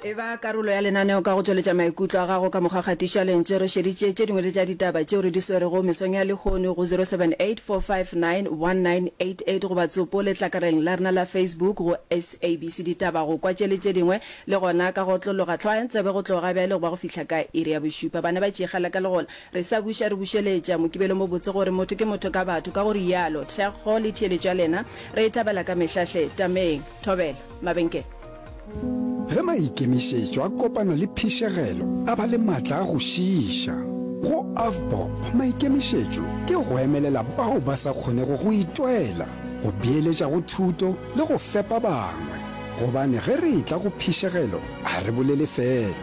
e ba karolo ya lenaneo ka go tšweletša maikutlo a gago ka mokgwa kgatišo ya lentše re šeditše tše dingwe le tša ditaba tšeo re di swerego mesong ya lehono go 0784591988 goba tsopo letlakareng la rena la facebook go sabc ditaba go kwa tše le tše dingwe le gona ka go otlologa tlhoayang tsebe go tloga bjale goba go fihla ka iri ya bošupa bana ba tšegala ka legola re sa buša re bušeletša mokibelo mo botse gore motho ke motho ka batho ka go rialo thekgo le theeletšo ya lena re e thabela ka mehlahle tameng thobela mabenkele Ge maikemišetšo a kopana le phišegelo a ba le matla a go šiiša. Go Avbob maikemišetšo ke go emelela bao ba sa kgonego go itwela, go beeletša go thuto le go fepa bangwe. Gobane ge re etla go phišegelo ga re bolele feela.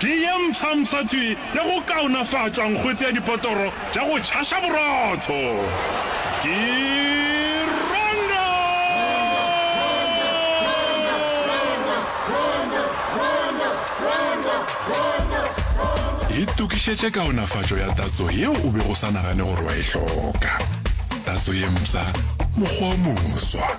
Ke ye mpshampsha tswi le go kaonafatšwa nkgwetse ya dipotoro tša go tšhaša borotho. Ke Rongo! Itokišetše kaonafatšo ya tatso yeo o bego o sa nagane gore wa e hloka. Tatso ye mpsha, mokgwa o moswa.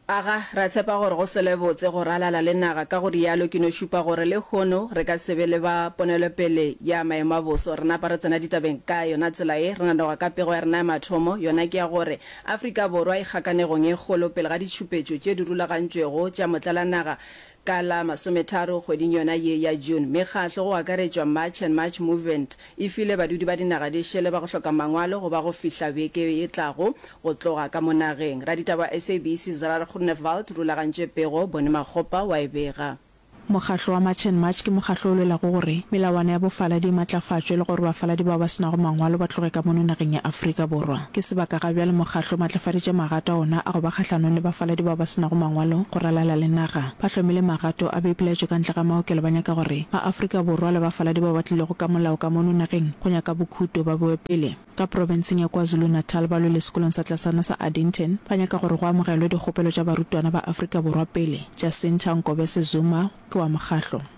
Aga, ra tshepa gore go sele botse go ralala le naga, ka go rialo ke no šupa gore le hono re ka se be le ba ponelopele ya maemo a boso. Re napa re tsena ditabeng ka yona tsela ye, re nanoga ka pego ya rena ya mathomo, yona ke ya gore Afrika Borwa e kgakanegong e kgolo pele ga ditšhupetšo tše di rulagantšwego tša motlalanaga Ka la masometharo kgweding yona ye ya June, mekgahlo go akaretšwa March and March Movement e file badudi ba dinaga di šele ba go hloka mangwalo go ba go fihla beke e tlago go tloga ka mo nageng. Raditaba wa SABC Zarar Groenewald rulagantše pego, Bone Makgopa wa e bega. Mokgahlo wa March and March ke mokgahlo o lwelago gore melawana ya bofaladi e matlafatšwe le gore bafaladi bao ba se nago mangwalo ba tloge ka mono nageng ya Afrika Borwa. Ke sebaka ga bjale Mokgatlo o maatlafaditše magato a ona a go ba kgahlanong le bafaladi bao ba se nago mangwalo go ralala le naga. Ba hlomile magato a boipilaetšo ka ntle ga maokelo ba nyaka gore maAfrika Borwa le bafaladi bao ba tlilego ka molao ka mono nageng go nyaka bokhuto ba bewe pele. Ka profenseng ya KwaZulu-Natal ba lwele sekolong sa tlasana sa Addington ba nyaka gore go amogelwe dikgopelo tša barutwana ba Afrika Borwa pele. Jacinta Nkobese Zuma ke wa mokgatlo.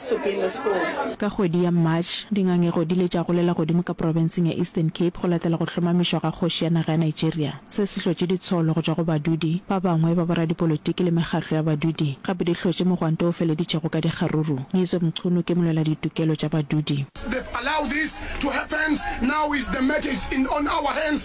Ka kgwedi ya March, dingangego di ile tša golela godimo ka profenseng ya Eastern Cape go latela go hlomamišwa ga kgoši ya naga ya Nigeria. Se se hlotše ditsholo go tšwa go badudi ba bangwe ba boradipolitiki le mekgatlo ya badudi, gape di hlotše mogwanto o feleditšego ka dikgaruru. Nyezo Mchunu ke molweladitokelo tša badudi.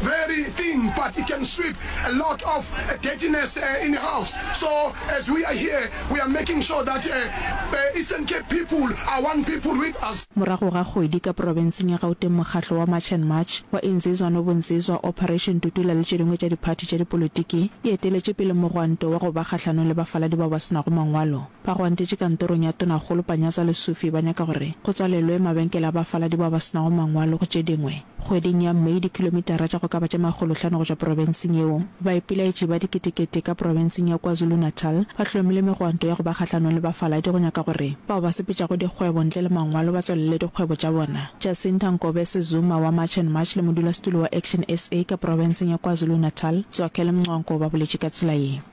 very thin but it can sweep a lot of dirtiness in a house so as we are here we are making sure that Eastern Cape people are one people with us. Morago ga kgwedi ka profenseng ya Gauteng mokgatlo wa March and March wa Insizwa no Bunsizwa, Operation Tutula le tše dingwe tša diphathi tša dipolotiki di eteletše pele mogwanto wa go ba kgahlanong le bafaladi bao ba se nago mangwalo. Ba go antetše kantorong ya Tonakgolo Panyaza Lesufi ba nyaka gore go tswalelwe mabenkele a bafaladi bao ba se nago mangwalo go tše dingwe. Kgweding ya Mei dikilomitara tša go ka ba tše makgolohlano go tšwa profenseng yeo, baipelaetši ba diketekete ka profenseng ya KwaZulu-Natal ba hlomile megwanto ya go ba kgahlanong le bafaladi go nyaka gore bao ba sepetšago dikgwebo ntle le mangwalo ba tswalele dikgwebo tša bona. Jacinta Nkobese Zuma wa March and March le modulasetulo wa Action SA ka profenseng ya KwaZulu-Natal, Zwakele Mncwanko ba boletše ka tsela ye.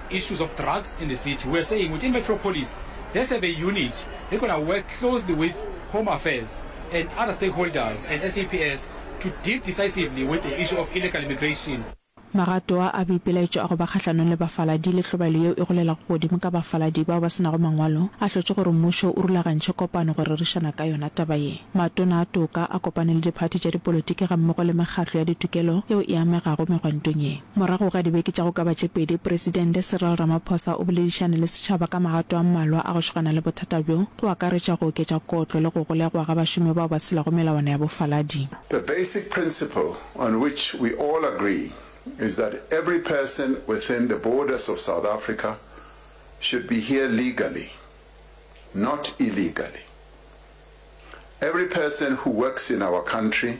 issues of drugs in the city, we are saying within Metro Police there is a be unit that going to work closely with Home Affairs and other stakeholders and SAPS to deal decisively with the issue of illegal immigration. Magato a a boipelaetšo a go ba kgahlanong le bafaladi le hlobaelo yeo e golelago godimo ka bafaladi bao ba se nago mangwalo a hlotše gore mmušo o rulagantšhe kopano go rerišana ka yona taba ye. Matona a toka a kopane le diphathi tša dipolotiki gammogo le mekgatlo ya ditokelo yeo e amegago megwantong ye. Morago ga dibeke tša go ka ba tše pedi, Presidente Cyril Ramaphosa o boledišane le setšhaba ka magato a mmalwa a go šogana le bothata bjo, go akaretša go oketša kotlo le go golegwa ga bašomi bao ba tshelago melawana ya bofaladi. The basic principle on which we all agree is that every person within the borders of South Africa should be here legally, not illegally. Every person who works in our country,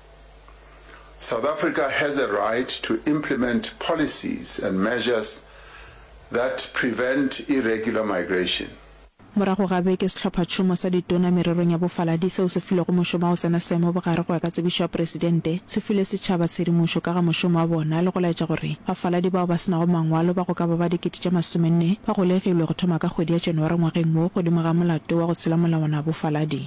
South Africa has a right to implement policies and measures that prevent irregular migration. Morago ga beke, Sehlophatšhomo sa Ditona mererong ya Bofaladi, seo se filwego mošomo wa go tsena seemo bogare go ya ka tsebišo ya Presidente, se file setšhaba tshedimošo ka ga mošomo wa bona le go laetša gore bafaladi bao ba se nago mangwalo ba go ka ba ba dikete tše masomenne ba golegilwe go thoma ka kgwedi ya January ngwageng wo godimo ga molato wa go tshela molawana wa bofaladi.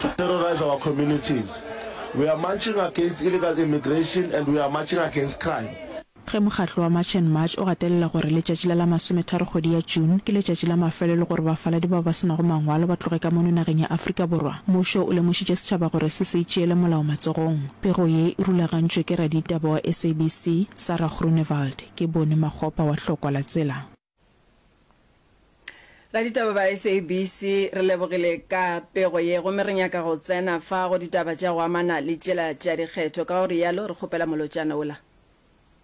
to terrorize our communities. We are marching against illegal immigration and we are marching against crime. Ge mokgatlo wa March and March o gatelela gore letšatši la la masometharo kgwedi ya June ke letšatši la mafelelo gore bafaladi bao ba se nago mangwalo ba tloge ka mono nageng ya Afrika Borwa, mmušo o lemošitše setšhaba gore se se itšeele molao matsogong. Pego ye e rulagantšwe ke raditaba wa SABC, Sarah Groenewald. Ke Boni Makgopa wa Hlokwa la Tsela. Ba ditaba ba SABC re lebogile ka pego ye gomme re nyaka go tsena fa go ditaba tša go amana le tšela tša dikgetho, ka go rialo re kgopela molotšana ola.